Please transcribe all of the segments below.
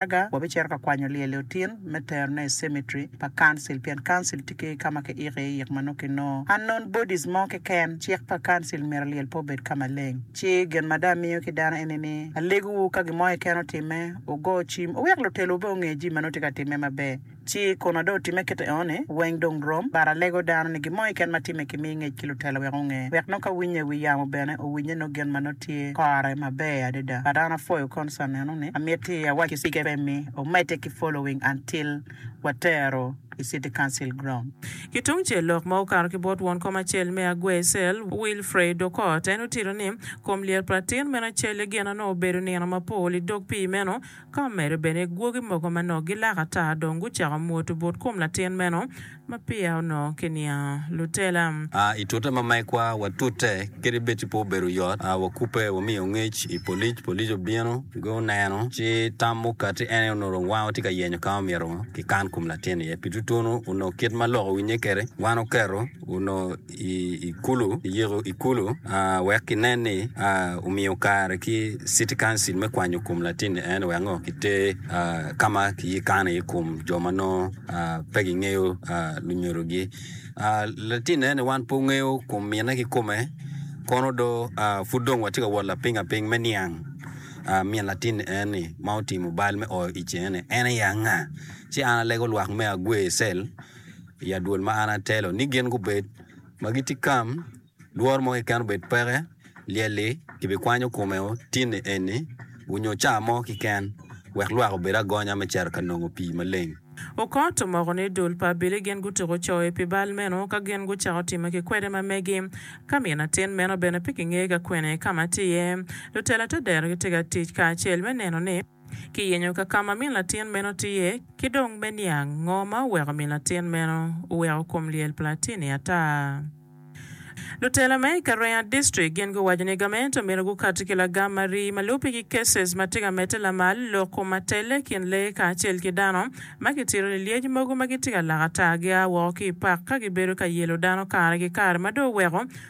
Gallagher wabicito ka kwanyo lyel-li otin me terone i cemetery pa Council pien Council tye ki ka ma kiiko iye yik ma nongo kinongo unknown bodies mo keken. Cik pa Council myero lyel pe obed ka maleng. Ci gin ma dong amiyo ki dano eni ni, alegowu ka gin mo keken otimme, wugo cim, wuwek lutelowu bene gunge jami ma nongo tye ka timme maber. Ci kun ado otimme kite eno-ni, weng dong rom, but alego dano ni gin mo keken ma timme kimi ngec ki lutela wek onge, wek nongo ka winye i wi yamo bene owinye nongo gin ma nongo tye kore maber adada. But an apwoyo concern eno ni amiti awac ki Speaker Pemmy omedde ki following until watero i City Council Ground. Ki tung cel lok ma okato ki bot won kom acel me Agwey Cell, Wilfred Okot, en otito ni, Kom lyet pa latin meno celle gin na nongo obedo nino mapol i dog pii meno, Ka omedde bene, gwogi mogo ma nongo gilak ata dong gucako mwoto but kom latin meno ma peya onongo kiniango lutela. I tute ma megwa watute kede Betty pe obedo oyot. Wakubbe, wamiyo ngec i polic. Polic obino, gu neno, ci tam mukati en aye onongo dong wango tye ka yenyo ka ma omyero ki kan kom latin iye. Pi tutunu, onongo kit ma lok owinnye kede, wan oketo, onongo. i kulu iyiko i kulu wek ki nen ni omiyo kare ki city council me kwanyo kom latin ni ene wek ngo ki ter kama ki kano i ye kom jo ma nongo pe gi ngeyo lunyodo gi latin ni ene wan pe wangeyo kom mine ki kome kono do pud dong watye ka wot lapiny apiny me niang min latin ni eni ma otimo bal me oyo ic eni en aye anga ci an alego lwak me agwe cell. I adwol ma an atelo ni gin gubed, ma gitye kam, lworo mo keken obed peke, lyel-li kibikwanyo kome otinni eni onyo caa mo keken, wek lwak obed agonya me cito ka nongo pii maleng. Okot omoko ni dul pa abili gin gutuko coe pi bal meno ka gin gucako timme ki kwede ma megi. Ka min atin meno bene pe kingeyo ka kwene ka ma tye iye, lutela te dero gitye ka tic kacel me neno ni. ki yenyo ka ka ma min latin meno tiye, ki dong me niang ngo ma oweko min latin meno oweko kom lyel pa latin-ni ata. Lutela me i Karea District gin guwaco ni gament omyero gukati ki lagam ma rii ma lubbe ki cases ma tye ka medde lamal lok kom ma telle i kin lee kacel ki dano ma kitito ni lyec mogo ma gitye ka lak ata gia woko ki i pak ka gibedo ka yelo dano kare ki kare ma dong oweko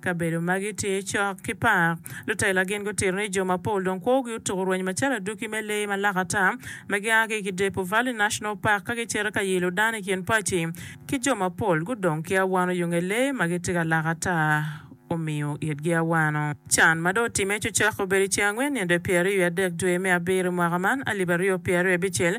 Kabedo magi tye cok ki pa lutela. Gin gutito ni jo mapol dong kwogi otuko rweny macalo aduki me lee ma lak ata ma gia ki i Kidepo Valley National Park ka gicito ka yilo dano i kin paci ki jo mapol gudong ki awano i yunge lee ma gitye ka lak ata omiyo itgi awano. Can ma dong otimme cucok obedo i ceng angwen nino dwe pyeraryo wiye adek dwe me abiro i mwaka man alip aryo pyeraryo abicel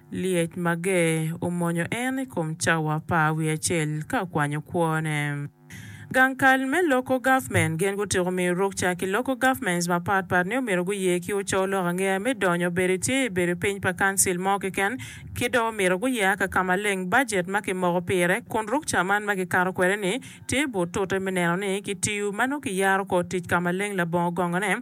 Lyec mager omwonyo en i kom cawa pa wiye acel ka okwanyo kwone. Gang kal me Local Government gin gutyeko miyo rukca ki Local Governments mapat pat ni omyero guye ki oco lok angeya me donyo bedo i tye i bedo piny pa Council mo keken ki dong omyero guye aka ka maleng budget ma kimoko pire kun rukca man ma kikato kwede ni tye but tute me neno ni kitiyo ma nongo kiyaro kor tic ka maleng labongo gongone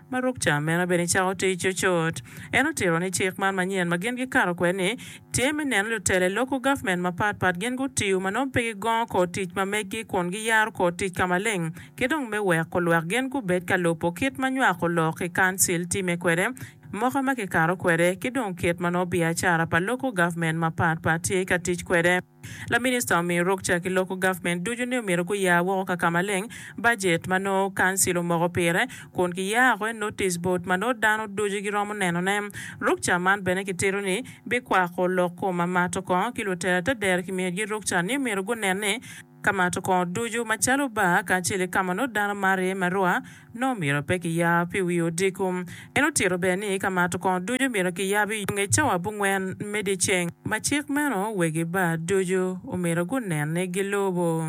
Ma ruk ca meno bene icako tic cocot. En otito ni cik man manyen ma gin gikato kwede ni tye me neno lutela i loku gavment mapat pat gin gutiyo ma nongo pe gigongo kor tic ma meggi kun giyaro kor tic ka maleng ki dong me weko lwak gin gubed ka lubo kit ma nywako lok i kancil timme kwede moka ma kikato kwede ki dong kit ma nongo biacara pa loku gavment mapat pat tye ka tic kwede. Laminista omiyo ruk ca ki loko gavment ducu ni omyero guya woko kakamaleng bajet ma nongo kancil omoko pire kun kiyako i notice board ma nongo dano ducu giromo neno ne. Ruk ca man bene kitito ni bikwako lok kom ma mato kongo ki lutela te dero kimiyo gi ruk ca ni omyero gunen ni kamato kongo ducu macalo bar kacel ki kama nongo dano maro iye marwa, nongo myero pe kiyab pi wi odiko. En otito bene ni ka mato kongo ducu myero kiyab i nge cawa abongwen me dyeceng. Ma cik meno, wegi bar ducu omyero gunen ni gilubo.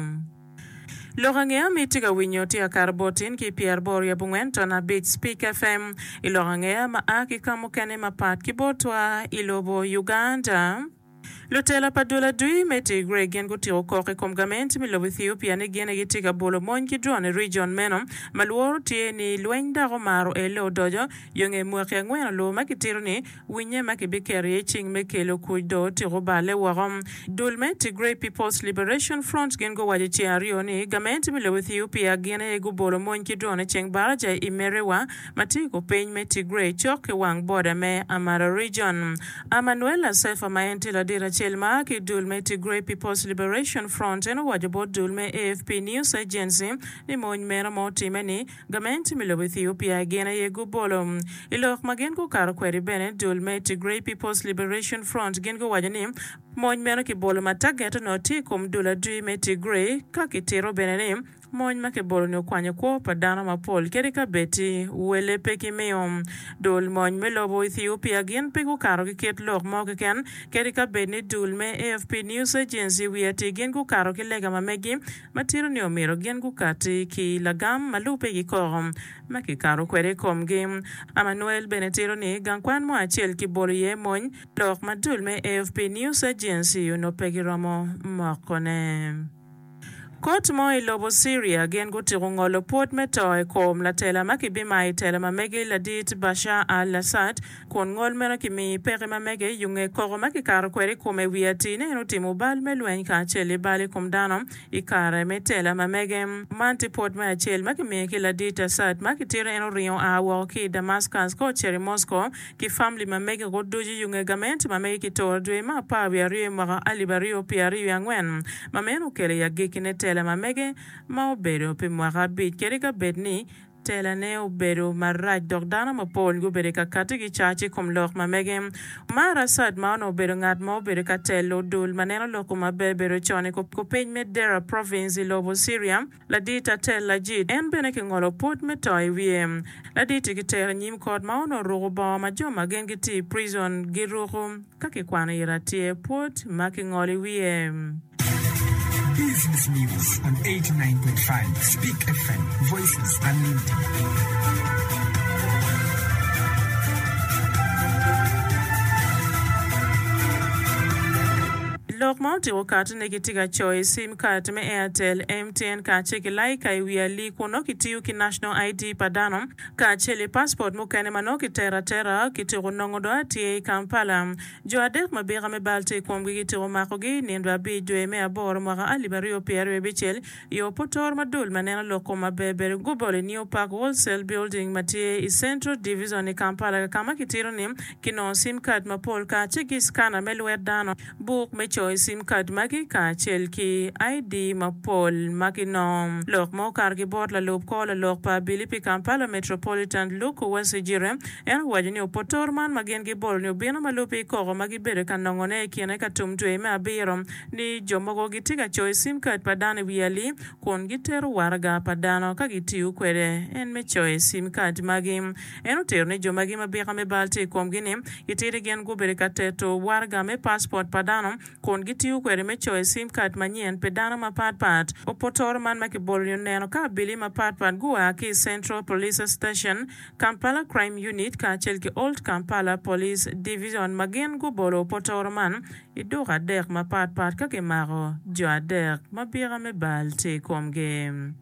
Lok ange ma itye ka winyo tye akato bot tin ki pyer boro i abongwen ton abic Speak FM i lok ange ma a ki ka mukene mapat ki botwa i lobo Uganda. Lutela pa dul adwi me Tigray gin gutiko kok i kom gament me lobo Ethiopia ni gin aye gitye ka bolo mony ki drone i region meno ma lworo tye ni lweny dok omaro ele odoco yo nge mwaki angwen oloo ma kitito ni winye ma kibiketo iye cing me kelo kuc dong otyeko oballe woko. Dul me Tigray People's Liberation Front gin guwaco ceng aryo ni gament me lobo Ethiopia gin aye gubolo mony ki drone i Cengbarajay i Merewa, ma tye i kor piny me Tigray cok ki wang boda me Amhara Region. Amanuel Asefa ma en tye ladit acel ma a ki i dul me Tigray People's Liberation Front en owaco bot dul me AFP News Agency ni mony meno ma otimme ni gamente me lobo Ethiopia gin aye gubolo. I lok ma gin gukato kwede bene dul me Tigray People's Liberation Front gin guwaco ni mony meno kibolo ma target onongo tye i kom dul adwi me Tigray ka kitito bene ni Mony ma kibolo-ni okwanyo kwo pa dano mapol kadi ka bed wele pe gimiyo dul mony me lobo Ethiopia gin pe gukato ki kit lok mo keken kadi ka bed ni dul me AFP News Agency wiye atir gin gukato ki lega ma megi ma tito ni omyero gin gukati ki lagam ma lubbe kikoko ma kikato kwede i komgi. Amanuel bene tito ni gang kwan mo acel kibolo iye mony lok ma dul me AFP News Agency onongo pe giromo mokone. Kot mo i lobo Syria gin gutiko ngolo pwod me to i kom latela ma kibimayo i tela ma mege ladit Bashar al-Assad, kun ngol meno kimiyo i peke ma mege yo nge koko ma kikato kwede i kome i wi atir ni en otimo bal me lweny kacel i bal i kom dano i kare me tela ma mege. Man tye pwod me acel ma kimiyo ki ladit Assad ma kitito en oringo oa woko ki i Damascus ka ocito i Moscow ki famli ma mege woko ducu i Unge Gamente ma mege ki toro dwe me apar wiye aryo i mwaka alip aryo pye aryo wiye angwen ma meno okelo i agikki ne tela ma mege ma obedo pi mwaka abic kadi ka bed ni tela ne obedo marac dok dano ma pol gubedo i ka kati ki cac i kom lok ma mege ma Arasad ma onongo obedo ngat ma obedo ka telo dul ma neno lok-ku ma bebedo con i kupiny me Deraa Province i lobo Syria. Ladit Atel Lajit, en bene kingolo pwod me to i wiye. Ladit-ti kitero i nyim kot ma onongo oruko bongo ma jo ma gin gitye i pricon giruko ka kikwano i Ratye pwod ma kingolo i wiye. Business News on eighty nine point five Speak FM, Voices Unlimited. Lok ma otiko katine gitye ka coyo i Kat me Airtel, MTN kacel ki Lyca i wi ali kun nongo kitiyo ki National ID pa dano kacel i paspot mukene ma nongo kitero atera kityeko nongo do atye i Kampala. Jo adek ma bika me bal tye i komgi kityeko makogi i nino abic dwe me aboro mwaka alip aryo pyeraryo abicel i oputor ma dul ma neno lok kom maber bedo gubolo i New Park Wholesale Building ma tye i Central Division i Kampala kama kitito ni kinongo sim card mapol kacel ki scanner me lwet dano buk me coyo sim kad magi kacel ki ID mapol ma ginongo. Lok ma okato ki bot lalub kor lalok pa abili pi Kampala Metropolitan Luke Wasijire, en owaco ni opoto-oro man ma gin gibolo ni obino ma lubbe ikoko ma gibedo ka nongone i kine ka tum dwe me abiro ni jo mogo gitye ka coyo sim kad pa dano i wi ali kun gitero waraga pa dano ka gitiyo kwede en me coyo sim kad magi En otero ni jo magi ma bika me bal tye i komgi ni itidi gin gubedo ka teto waraga me paspot pa dano kun gitiyo kwede me coyo sim kad manyen pi dano mapat pat. Opotoro man ma kibolo-ni oneno ka abili mapat pat gua ki i Central Police Station, Kampala Crime Unit kacel ki Old Kampala Police Division ma gin gubolo opotoro man i duka adek mapat pat ka kimako jo adek ma bika me bal tye i komgi.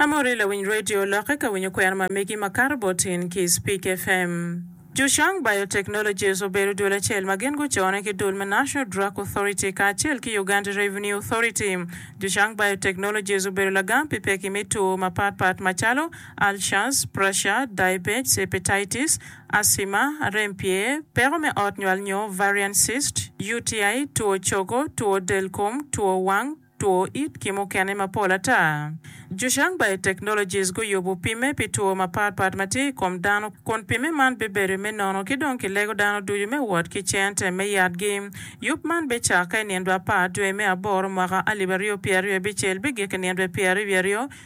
Amori lawiny radio lokke ka winyo kwena ma megi ma kato bot in ki Speak FM. Zhushang Biotechnologies obedo dul acel ma gin gucone ki dul me National Drug Authority kacel ki Uganda Revenue Authority. Zhushang Biotechnologies obedo lagam pi pekki me two mapat pat macalo, ulcers, pressure, diabetes, hepatitis, asthma, rem pye, peko me ot nywal nyo ovarian cyst, UTI, two cogo, two del kom, two wang, Two it ki mukene mapol ata. Zhushang Biotechnologies guyubo pimme pi two mapat pat ma tye i kom dano kun pimme man bibedo me nono ki dong kilego dano ducu me wot ki cente me yatgi. Yub man bicakke i nindwa apar dwe me aboro mwaka alip aryo pyeraryo abicel bigik i nindwa pyeraryo wiye aryo.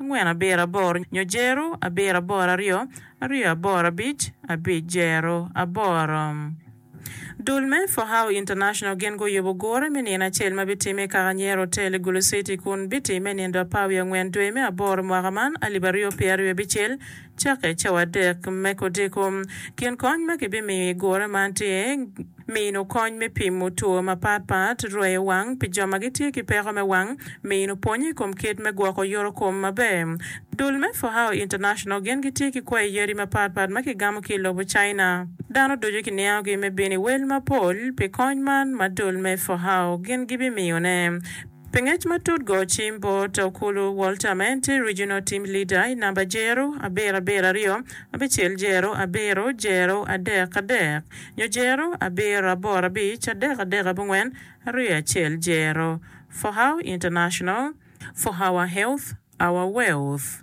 angwen abiro aboro nyo jero abiro aboro aryo aryo aboro abic abic jero aboro. Dul me For How International gin guyubo gure me nino acel ma bitime i Kakanyera Hotel i Gulu City kun bitimme nindo apar wiye angwen dwe me aboro mwaka man alip aryo pyeraryo abicel Cakke cawa adek me kodiko. Kin kony ma kibimiyo i gure man tye, Mino kony me pimo two mapat pat, rweyo wang pi jo ma gitye ki peko me wang, mino pwonyo i kom kit me gwoko yoto kom maber. Dul me Fohao International gin gitye ki kwayi yadi mapat pat ma kigamo ki i lobo China. Dano ducu kiniangogi me bino i wel mapol pi kony man ma dul me Fohao gin gibimiyone. Pi ngec matut go cim bot Okulu Walter ma en tye Regional Team Leader i namba Jero abiro abiro aryo abicel Jero abiro Jero adek adek nyo Jero abiro aboro abic adek adek abongwen aryo acel Jero For how international For our health, our wealth.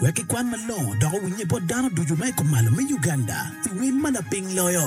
Wek kikwan malongo dok owinye bot dano ducu ma i kom malo me Uganda i wel ma lapiny loyo.